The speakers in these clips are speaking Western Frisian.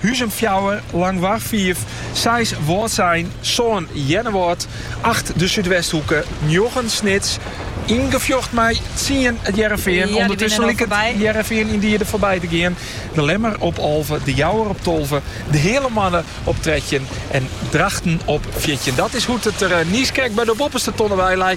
Huzum fjouwer, Langwar fiif, seis Wâldsein, sân Earnewâld, acht de Súdwesthoeke, njoggen Snits, yn gefjocht mei tsien It Hearrenfean. Undertusken liket It Hearrenfean yndie der foarby te gean. De Lemmer op alve, De Jouwer op tolve, De Heale Moanne op trettjin en Drachten op fjirtjin. Dat is hoe't it der niiskrekt by de boppeste tonne by lei.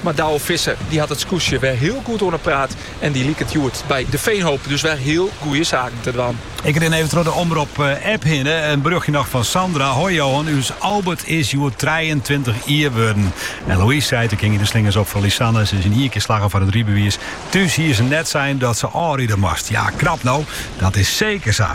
Mar Douwe Visser dy hat it skûtsje wer hiel goed oan 'e praat en dy liket hjoed by De Veenhoop dus wer hiel goeie saken te dwaan. Ik rin even troch de Omrop-app hinne. In berjochtje noch fan Sandra. Hoi Johan, ús Albert is hjoed trijentweintich jier wurden. En Louise seit, der kinne de slingers op foar Lisanne. Se is yn ien kear slagge foar it rybewiis. Thús hie se net sein dat se ôfride moast. Ja, knap no, dat is seker sa.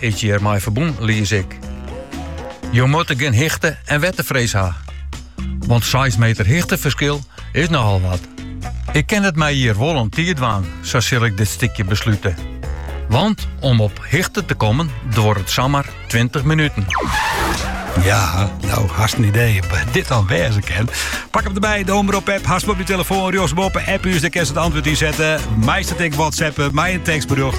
is hjir mei ferbûn, lies ik. Jo moatte gjin hichte en wetterfrees ha. Want seis meter hichteferskil is nochal wat. Ik kin it my hjir wol oan tiid dwaan, sa sil ik dit stikje beslute. Want om op hichte te kommen duorret it samar 20 minuten. Ja, no, hast in idee wat dit dan wêze kin? Pak him derby, de Omrop-app, hast op dyn telefoan, rjochtsboppe, app ús, dêr kinst it antwurd yn sette. Meist it ek whatsappe, mei in tekstberjocht.